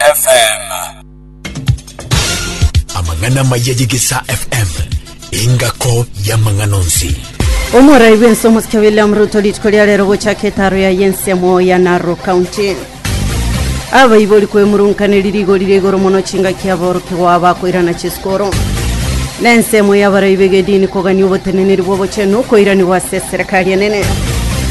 FM. Amang'ana amaya y'Egesaa FM, engako y'amang'ana onsi. Omorai bw'ense omosike William Ruto rituko ria rero gochaka etaro ya yensemo ya Narok County. Abaibori kwemurunkaneri rigori ria igoro mono chingaki aboroki gwao bakoirana chisikoro. Na ensemo y'abarai b'egedini kogania oboteneneri bw'obochenu okoiranigwa ase eserekari enene.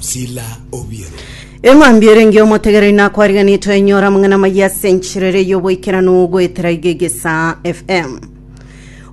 Sila Obiero. Eng'wanbi erenge omotegera inakwariganie twenyora amang'ana amaya ase enchera ere y'oboikeranu goetera iga egesaa FM.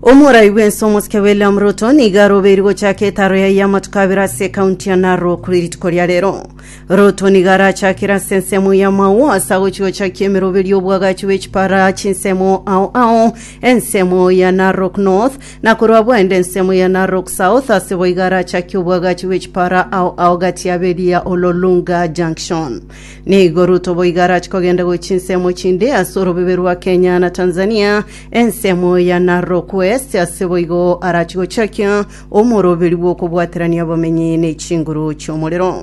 Omorai bw'ense omosike William Ruto niga arobeiri gochaka etaro yaye y'amatuko abere ase ekaunti ya Narok rituko ria rero. Ruto niga arachakire ase ensemo y'amao ase agochi gochakia emeroberi y'obwagachi bw'echipara chinsemo ao ao ensemo ya Narok North Na korwa bwende ensemo ya Narok South ase boiga arachakie obwagachi bwe chipara ao ao gati ya Beria Ololunga Junction. Nigo Ruto boiga arache kogenda gochia ensemo chinde ase orobebe rwa Kenya na Tanzania, ensemo ya Narok West ase boigo arache gochakia omoroberi bw'okobwaterania abamenyi ne chinguru chi'omorero.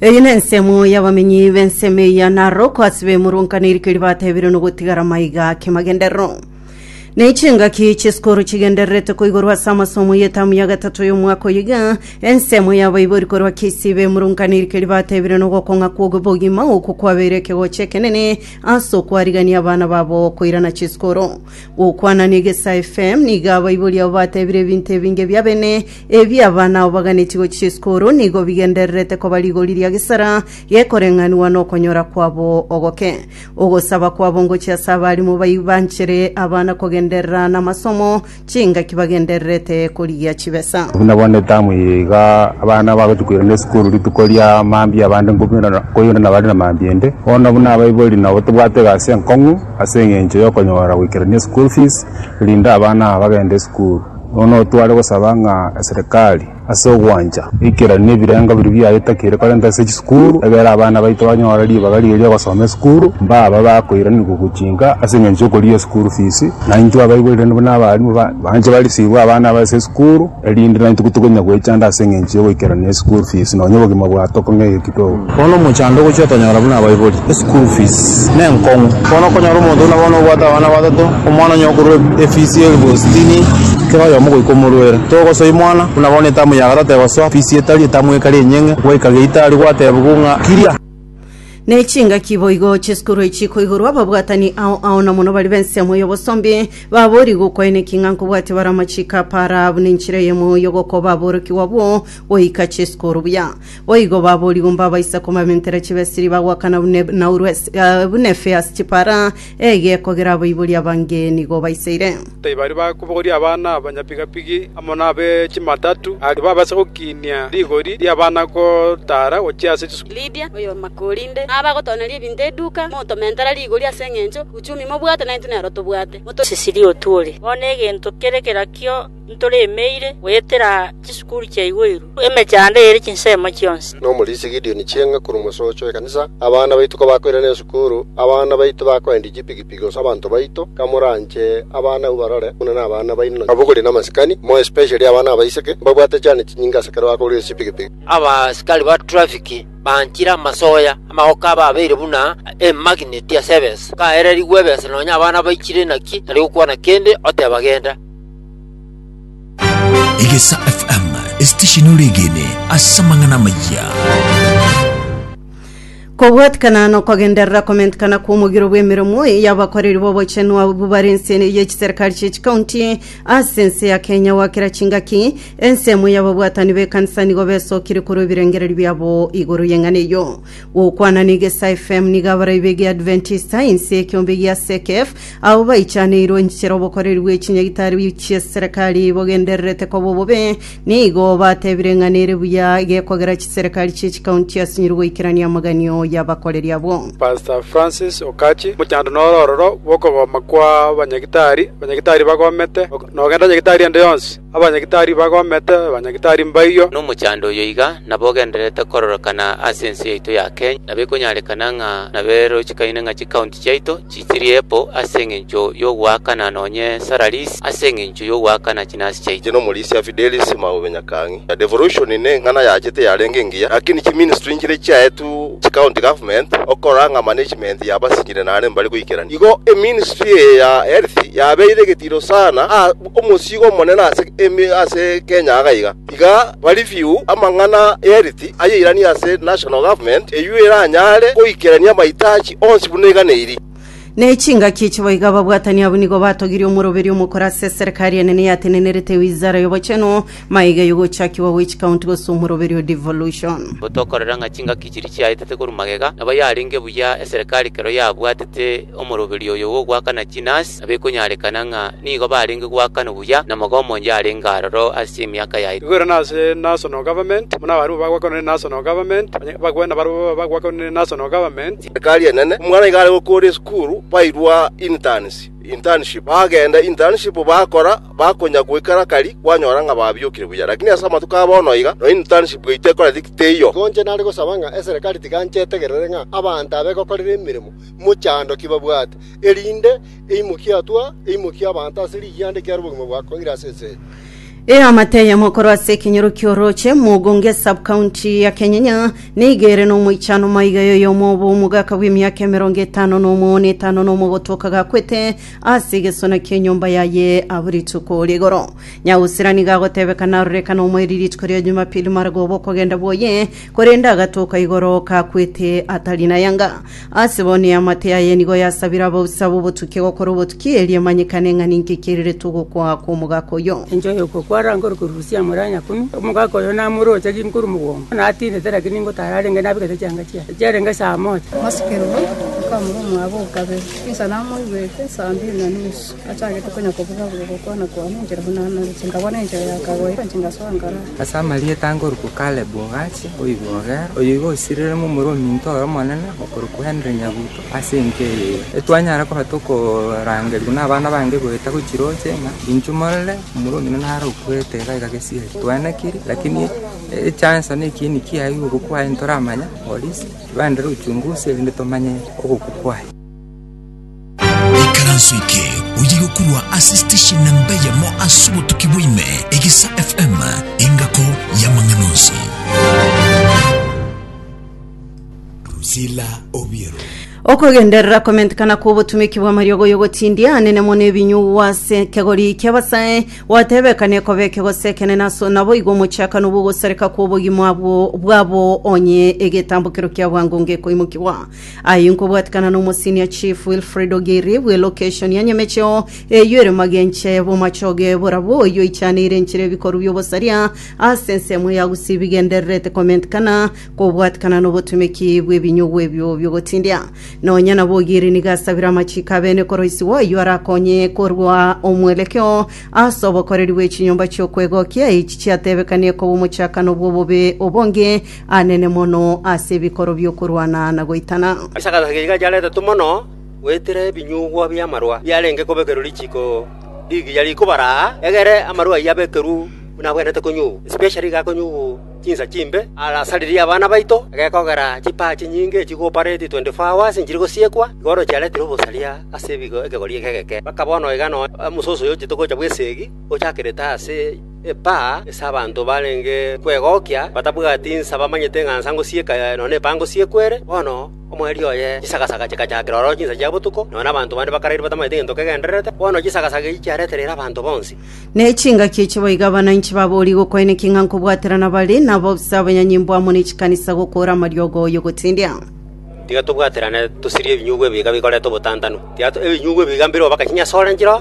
Eye nensemo y'abamenyi b'ensemo eya naro kwasi bemurungana erike ribatebire nogotigara maiga kemagenderero. Nechingaki chesukuru chigendererete koigorwa ase amasomo y'etamu ya gatato y'omwaka oyiga. Ensemo y'abaibori korwa Kisii bemurungana erike ribatebire nogokong'a kw'obogima oko kwabeire ekegocho ekenene ase okwarigania abana babo koirana chisukuru. Gokwana na Egesae FM nigo abaibori abo batebire ebinto ebinge bia bene ebi abana abo baganetie gochia esukuru nigo bigendererete koba rigori ria gesara gekoreng'anigwa nokonyora kwabo ogoke. Ogosaba kwabo ngochia ase abarimo bayi banchere abana kogenderera namasomo chingaki bagendererete korigia chibesa. Buna bono etamu eye iga abana bagochia koirana esukuru rituko ria mambia abande nkobi- nkoirana bare na mambia ende. Bono buna abaibori nabo tobwate egasi enkong'u. Ase engencho y'okonyora goikerania school fees, rinde abana aba bagende esukuru. Bono tware gosaba ng'a eserekari ase ogwancha eikeranie ebirengo biria biaye takeire korenta ase chisukuru, egere abana baito banyore ribaga riria ri'ogosoma esukuru, mbaba bakoiranigwa gochinka ase engencho y'okorigia school fees. Na intwe abaibori rende buna abarimu, banche barisibwe abana aba ase esukuru. erinde naintwe kotokonya goechanda ase engencho y'ogoikerania eschool fees nonya obogima bwa toko ng'ege kidogo. Bono omochando ogochia otonyora buna abaibori, eschool fees nenkong'u. Bono okonyora omonto buna bono obwate abana batato, omwana onye okorwa efees ya elfu sitini, kera oyomo goika omorwere, togosoa imwana, buna bono etamu ya gatato egosoa fees etari etamu ekare enyeng'e, gwaika geita aria gwatebigwa ng'a kiria. Ne chingaki boigo chi'esukuru echi chikoigorwa ababwatani ao ao na mono baria b'ensemo y'obosombi, baboorigwe gokoeneki ng'a nkobwatia bare amachiko a para buna enchera eyemo y'ogokoba aborokigwa abwo goika chi'esukuru buya. Boigo baboorigwe mbabaisa kobamentera chibesiri bagoakana buna Enauru ase- eh, buna efeasi chipara Egeeko geraboiborie abangeni nigo baiseire. Tibari bakobogoria abana abanyapigapigi amo nabe chimatatu, aria babaisa gokiinia rigori ri'abana gotaara gochia ase chisukuru. Lidia, oyorema korinde nabe agotoneria ebinto eduka, motomentera rigori ase engencho uchumi mobwate naintwe nero tobwate. Moto. Cecilia Otuori, Bono egento kere kerakio. ntoremeire goetera chisukuru chia igoiru, emechando ere chinsemo chionsi. Nomorisia Gideoni chieng'a korwa omosocho w'ekanisa, abana baito kabakoirana esukuru, abana baito bakoendia chipigipigi gose abanto baito, kamoranche abana abwo barore buna nabana baino na abogori namasikani, more especially abana abaiseke, mbabwate chane chinyinga ase ekero bakogorire chipigipigi. Abasikari ba trafiki banchire amasoya, amagoka abe abeire buna emagineti ase ebesa, kaererigwe ebesa nonya abana baichire naki tari gokwana kende, oteba genda. Egesa FM, esitesheni oregene ase amang'ana amaya. kobwatikana nokogenderera komentikana kw'omogiro bw'emeremo y'abakoreri b'obochenu abwo bare ense y'echiserikari chi'echikaunti ase ense ya kenya gwakera chingaki ensemo y'ababwatani b'ekanisa nigo besokire korwa ebirengererio biabo igoro y'eng'ana eyo Gokwana n'egesae FM nigo abaraibe egia Adventista inse ekiombe gia CECF ao baichaneirwe inchera obokoreri bwe chinyagitari chi'eserekari bogendererete koba obobe nigo batebire ng'a nere buya gekogera chiserekari chie chikaunti asinyire goikerania amaganio y'abakoreri abwo. Pastor Francis Okachi, Mochando nore ororo bw'okogoma kwa abanyagitari, abanyagitari bagomete, nogenda nyagitari ende yonsi. Abanyagitari bagomete, abanyagitari mbaiywo. Nomochando oyo iga nabo ogendererete kororokana ase ense yaito ya Kenya, na bikonyarekana ng'a naberochikaine ng'a chikaunti chiaito chisirie po ase engencho yogoakana nonye salaries ase engencho yogoakana chinasi chiaito. Inche nomorisia Fidelis Maube Nyakangi. Devolution neng'ana yachete yarenge engiya, lakini chiministry nchiria chiaetwe chicounty government okorora ng'a management yabasinyire nare mbare goikerania. Igo eministry eye ya health yabeire egetiro sana aa. Omosiiga omonene ase ase Kenya aga iga, Tiga bareview amang'ana y'eriti ayeiranio ase National Government, eyio eranyare goikerania amaitachi onsi buna eganeiri. Ne chingaki echi boiga ababwatani abwo nigo batogirie omoroberi omokoro ase eserekari enene eyatenenerete Wizara y'Obochenu, magega eyogochakigwa gwe chikaunti gose omoroberi o devolution. Gotokorera ng'a chingaki chiria chiaetete korwa magega, nabo yarenge buya eserekari kero yabwatete omoroberi oyo bw'ogoakana chinasi. na bekonyarekana ng'a nigo barenge goakana buya namoga omonche arenge aroro ase emiaka yaito. Igwere nase national government, buna abarabwo bagwakanwa ne national government, onye bagwe nabarabwo baba bagwakanwa ne national government. Ekari enene, omwana iga are gokora esukuru, bairwa interns, internship, bagenda internship bakora, bakonya goikera kari, kwanyora ng'a babiokire buya. Lakini ase amatuko a bono iga, nonya internship yaito ekoreti ki teiyo. Igo inche nare gosaba ng'a eserekari tiga inche etegerere ng'a abanto aba egokorera emeremo mochandoki babwate, erinde eimokie atwa eimokie abanto ase rigianda ekiagera obogima bwa Koire ase ense eye. Eamate eyemo korwa ase ekenyoro ki'orooche Mugunga esubcounty ya Kenyenya nigo ere nomoichano maiga y'oyomo obo omogaka bw'emiaka emerongo etano na omo na etano na omo gotoka gakwete ase egesona ki'enyomba yaye abwo rituko rigoro nyagusira nigo agotebekana arore ekana omoeri rituko ria Jumapili margo obokogenda bwoye Korende agatoka igoro kakwete atari nayanga. Ase bono eamate yaye nigo yasabire abausa b'obotukia gokora obotukia erio emanyekane ng'a ninki kirirete ogokwa kw'omogaka oyio. Enchwa y'ogokwa arangore korusia amore a nyakumi, omogaka oyo namoroche ginkoru mogongo, natindete, lakini ingo tararenge nabegete chianga chiaye, echiarenge saa mocha. Mosike roro, okamura omwabo o kabere, insa namoigwete saa mbiri na nusu. Nachagete konya kobuga buga gokwana kwane enchera buna Anani, chingabwana enchera ya kagoita, chingasoa ngara. Ase amarieta ngoruku Caleb Ogachi oigwe Ogera, oyo igo osirirwe momura ominto ore omonene, okorokwa Henry Nyabuto, ase enka eye ira. Etwanyara koba tokorangerigwa nabana bange goeta gochia roche, ng'a inchuo morore omura omino naro okwete iga iga gesieri. Twaenekiri, lakini echanso ne ekieni kiaye igokwa kwaye ntoramanya, polisi, ibaenderere ochungusi erinde tomanye ogokwa kwaye. Ikaranso eke oye gokurwa ase station namba eyemo ase obotuki bwaime, Egesa FM, engako y'amang'ana onsi. Drusilla Obiero. okogenderera komentekana kw'obotumiki bw'amariogo y'ogotindia anene mono ebinyugwa ase ekegori ki'abasae gwatebekana ekobe ekegos'ekene naso naboigo omochakano bw'ogosareka kw'obogima bwo- bwabo onye egetambokero kia bwango ngekoimokigwa Ayio nkobwatikana na Omosenior Chief Wilfred Ogiri bwe location ya Nyamecheo eyio ere magenche bw'omachoge borabwo oyio oichaneire enchera ebikoru bi'obosaria ase ensemo ya Gusii bigendererete komentikana kobwatikana nobotumeki bw'ebinyugwa ebio bi'ogotindia. Nonya nabo Ogiri nigo asabire amachiko abene koroisigwa oyio arakonye korwa omwerekeo ase obokoreri bw'echinyomba chi'okwegokia echi chiatebekanie koba omochakano bw'obobe obonge Anene mono ase ebikoro bi'okorwana na goitana. Ase agataka gaiga chiaretetwe mono goetera ebinyugwa bi'amarua biarenge kobekerwa richiiko rigiya rikobara aa, egere amarua ayio abekerwe buna abwenerete konyugwa, especially iga akonyugwa chinsa chimbe, arasaririe abana baito, egekogera chipaa chinyinge echi cooperate 24 hours nchire gosiekwa, iga bono chiaretire obosaria ase ebigo ekegori eke egeke, mpaka bono iga nonya omososo oyochete gocha bw'esegi ochakerete ase. epaa ase abanto barenge kwegokia, batabwati insa bamanyete ng'a nsa ngosieka nonya epaa ngosiekwa ere. Bono omwerio oye chisagasaga chikachakera ororo chinsa chia botuko, nonya nabanto bande bakarairwe batamanyete gento kegendererete, bono chisagasaga echi chiaretereire abanto bonsi. Ne chingaki echi boigo abananchi baboorigwe okwaeneki ng'a nkobwaterana bare nabo ase abanyanyimbo amo ne chikanisa gokoora amariogo y'ogotendia. Tiga tobwaterane, tosirie ebinyugwa ebiiga bikorete obotantanu. Tiga ebinyugwa ebiiga mbireo bakachinyasore nchiroo,